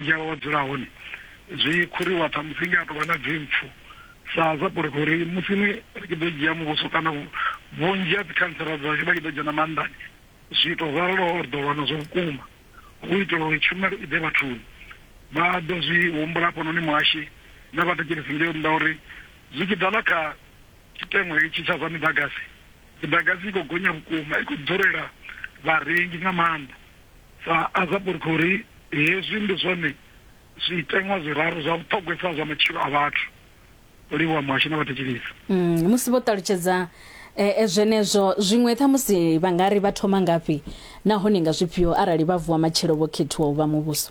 Dzhia wa dzula hone zwi khuriwa ṱhamusi nge a tou vha na dzimpfu sa sa porofo uri musi ni ri tshi ḓo dzhia muvhuso kana vhunzhi ha dzikhantsela dzashu vha tshi ḓo dzhena maanḓani zwiito zwo raloho ri ḓo lwa nazwo vhukuma hu itela uri tshumelo i ḓe vhathuni. Vha ḓo zwi humbula hafhanoni muhashi na vhathetshelesi ngei nnḓa uri zwi tshi ḓa na kha tshiteṅwa itshi tsha zwa miḓagasi, miḓagasi i khou gonya vhukuma, i khou ḓurela vharengi nga maanḓa. Sa Azaburkhori, hezwi ndi zwone zwiteṅwa zwiraru zwa vhuṱhogwesa zwa matshilo a vhathu, u livhuwa muhashi na vhathetshelesi. Musi vho ṱalutshedza zwenezwo, zwiṅwe ṱhamusi vha nga ri vha thoma ngafhi nahone nga zwifhio arali vha vuwa matshelo vho khethiwa u vha muvhuso?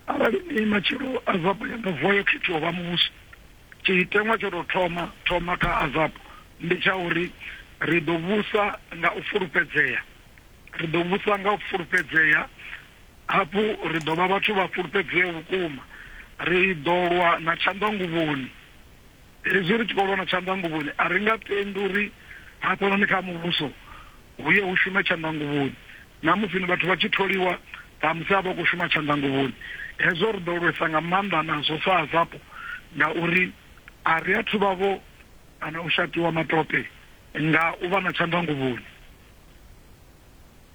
Arali ni matshelo Azabu ya nga vuwa yo khethiwa u vha muvhuso, tshiteṅwa tsho tou thoma thoma kha Azabu ndi tsha uri ri ḓo vhusa nga u fulufhedzea. Ri ḓo vhusa nga u fulufhedzea, hafhu ri ḓo vha vhathu vha fulufhedzeaho vhukuma. Ri ḓo lwa na tshanḓanguvhoni. Hezwi ri tshi khou lwa na tshanḓanguvhoni, a ri nga tendi uri hafhanoni kha Muvhuso hu ye hu shume tshanḓanguvhoni. Na musi ni vhathu vha tshi tholiwa, ṱhamusi a vha khou shuma tshanḓanguvhoni. Hezwo ri ḓo lwesa nga maanḓa nazwo sa Azapo, ngauri a ri athu vha vho kana u shatiwa matope nga u vha na tshanḓanguvhoni.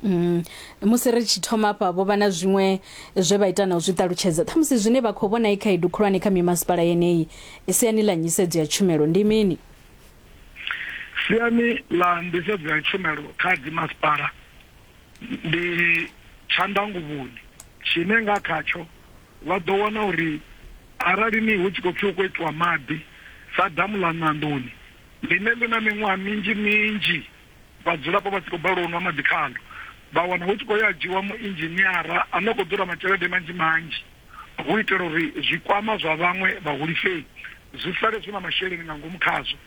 Mm. musi ri tshi thoma afha vho vha na zwiṅwe zwe vha ita na u zwi ṱalutshedza ṱhamusi zwine vha khou vhona i khaedu khulwane kha mimasipala yeneyi siani ḽa nyisedzo ya tshumelo ndi mini siani ḽa nḓisedzo ya tshumelo kha dzimasipala ndi tshandanguvhoni tshine nga khatsho vha ḓo wana uri arali ni hu tshi khou pfhi hu khou itiwa maḓi sa damu ḽa ṋandoni ḽine ḽi na miṅwaha minzhi minzhi Vhadzulapo vha tshi khou balelwa u nwa maḓi khaḽo, vha wana hu tshi khou ya ha dzhiiwa muinzhiniara ane a khou ḓura matshelede manzhi manzhi hu u itela uri zwikwama zwa vhaṅwe vhahulisei zwi sale zwi na masheleni nga ngomu khazwo.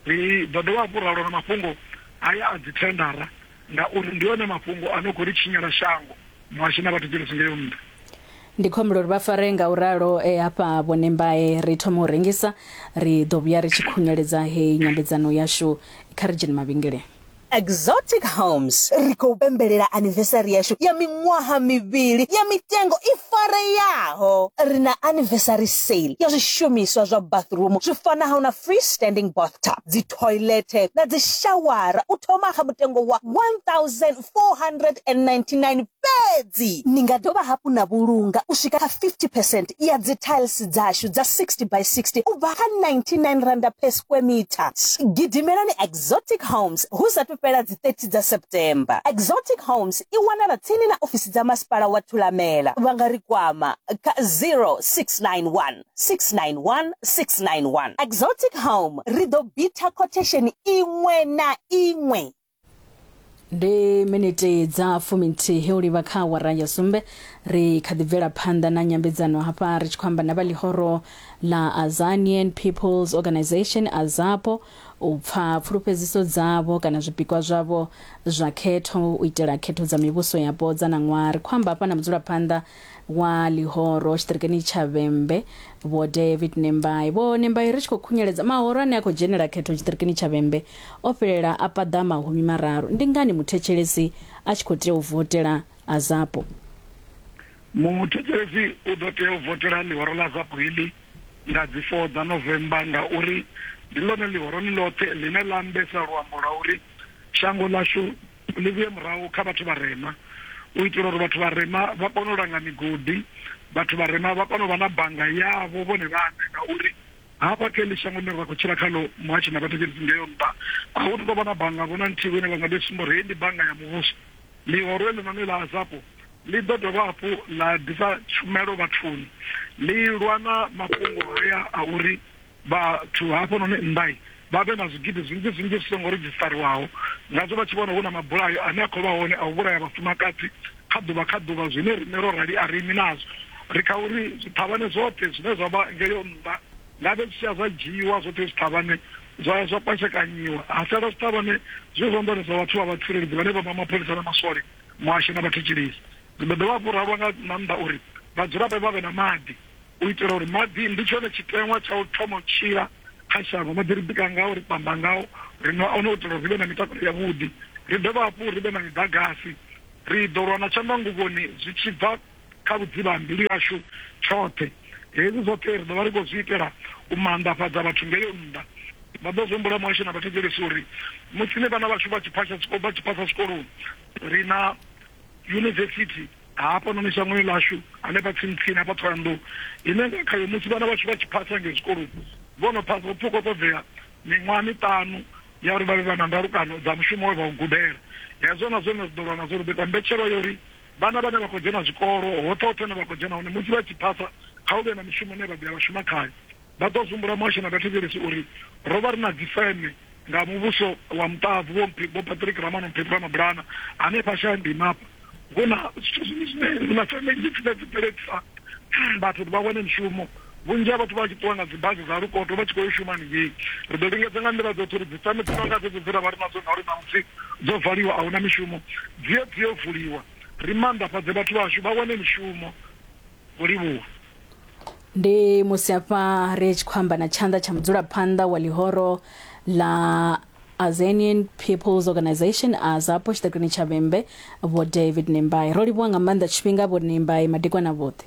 Ri ḓo dovha hafhu ra lwa na mafhungo haya a dzithendara ngauri ndi one mafhungo a no khou ri tshinyela shango. Muhasho na vha thudzela tshi ngeo nṱha. Ndi khombela uri vha fare nga u ralo e hafha vhone mbae ri thome u rengisa ri ḓo vhuya ri tshi khunyeledza heyi nyambedzano yashu kha ri dzhene mavhengeleni. Exotic Homes, Ri khou pembelela anivesari yashu ya miṅwaha mivhili ya mitengo i fareaho. Ri na anivesari sale ya zwishumiswa zwa bathroom zwi fanaho na free standing bathtub, dzithoilethe na dzishawara u thoma kha mutengo wa 499 fhedzi. Ni nga dovha hafhu na vhulunga u swika kha 50 percent ya dzi tiles dzashu dza 60 by 60 u bva kha 99 randa per square meter. Gidimelani Exotic Homes hu sathu fhela dzi 30 dza September. Exotic Homes i wanala tsini na ofisi dza Masipala wa Thulamela. Vha nga ri kwama kha 0691 691 691. Exotic Home, ri ḓo bitha quotation iṅwe na iṅwe. ndi miniti dza fuminthihi u livha kha awara ya sumbe ri kha ḓi bvela phanḓa na nyambedzano hafha ri tshi khou amba na vha ḽihoro la azanian peoples organization azapo u pfa pfulufhedziso dzavho kana zwipikwa zwavho zwa khetho u itela khetho dza mivhuso yapo dza na ṅwaha ri khou amba hafha na mudzulaphanḓa wa ḽihoro tshiṱirikeni tsha vhembe vho david nembai vho nembai ri tshi khou khunyeledza mahoro ane a khou dzhenela khetho tshiṱirikeni tsha vhembe o fhelela a paḓa mahumi mararu ndi ngani muthetshelesi a tshi khou tea u votela a zapo muthetshelesi u ḓo tea u votela ḽihoro ḽa zapo heḽi nga dzi 4 dza novemba ngauri ndi ḽone ḽihoro ḽi ḽoṱhe ḽine ḽa ambesa luambo lwa uri shango ḽashu Ḽi vhuye murahu kha vhathu vharema, u itela uri vhathu vharema vha kone u langa migodi, vhathu vharema vha kone u vha na bannga yavho vhone vhaṋe, ngauri hafha kha heḽi shango ḽine ra khou tshila khaḽo muhatshi na vhathetshelesi ngeo nnḓa, a hu tu tou vha na bannga vho na nthihi vho ine vha nga ḓi sumba uri heyi ndi bannga ya muvhuso. Ḽihoro heḽinoni ḽa Azapo ḽi ḓo dovha hafhu ḽa ḓisa tshumelo vhathuni, ḽi lwa na mafhungo haya a uri, vhathu hafhanoni nnḓa vha vhe na zwigidi zwinzhi zwinzhi zwi songo redzhisiṱariwaho, ngazwo vha tshi vhona hu na mabulayo ane a khou vha hone a u vhulaya vhafumakadzi kha ḓuvha kha ḓuvha, zwine riṋe ro rali a ri imi nazwo. Ri kha uri zwiṱhavhane zwoṱhe zwine zwa vha ngeyo nnḓa ngavhe zwi tshi ya zwa dzhiiwa, zwoṱhe zwiṱhavhane zwa ya zwa kwashekanyiwa, ha sala zwiṱhavhane zwi zwanḓani zwa vhathu vha vhatsireledzi vhane vha vha mapholisa na maswole muhasho na vhathetshelesi. Zwi ḓo dovha hafhu ra lwa nga maanḓa uri vhadzulapo vha vhe na maḓi. U itela uri maḓi ndi tshone tshiteṅwa tsha u thoma u tshila kha shango, maḓi ri bika ngao, ri pamba ngao, ri nwa one u itela uri ri vhe na mitakalo yavhuḓi, ri dovha hafhu ri vhe na miḓagasi. Ri ḓo lwa na tshanḓanguvhoni zwi tshi bva kha vhudzivha ha mbilu yashu tshoṱhe. Hezwi zwoṱhe ri ḓo vha ri khou zwi itela u maanḓafhadza vhathu ngei nnḓa. Vha ḓo zwi humbula muhasho na vhathetshelesi uri musi ni vhana vhashu vha tshi phasha vha tshi phasa zwikoloni, ri na yunivesithi. Hafhanoni shangoni ḽashu, hanefha tsini-tsini hafha Thohoyandou, ine nga khayo musi vhana vhashu vha tshi phasa ngei zwikoloni, vho no phasa, hupfi hu khou ṱoḓea miṅwaha miṱanu ya uri vha vhe vha na ndalukano dza mushumo we vha u gudela. Hezwo na zwone ri ḓo lwa nazwo, ri ḓo ita mbetshelwa ya uri vhana vhane vha khou dzhena zwikolo, hoṱhe-hoṱhe hune vha khou dzhena hone, musi vha tshi phasa, kha hu vhe na mishumo ine vha ḓo ya vha shuma khayo. Vha ḓo zumbula muhasho na vhathetshelesi uri ro vha ri na dzifeme nga muvhuso wa muṱahabvu Vho Vho Patrick Ramano Mphephu Ramabulana hanefha Shayandima hafha hu na zwithu zwinzhi zwine hu na feme nnzhi dzine dzi bveledzisa vhathu uri vha wane mishumo vhunzhi ha vhathu vha tshi ṱuwa nga dzibasi dza lukoto vha tshi khou yo shuma haningei ri ḓo lingedza nga nḓila dzoṱhe uri dzifeme dzi no nga dzedzo dze ra vha ri nadzo ngauri ṋamusi dzo valiwa a hu na mishumo dzi ye dzi yo vuliwa ri maanḓafhadze vhathu vhashu vha wane mishumo u livhuwa. Ndi musi hafha ri tshi khou amba na tshanḓa tsha mudzulaphanḓa wa ḽihoro ḽa Azanian People's Organization AZAPO tshiṱakini tsha Vhembe Vho David Nembai. Ro livhuwa nga maanḓa tshifhinga Vho Nembai madekwana vhoṱhe.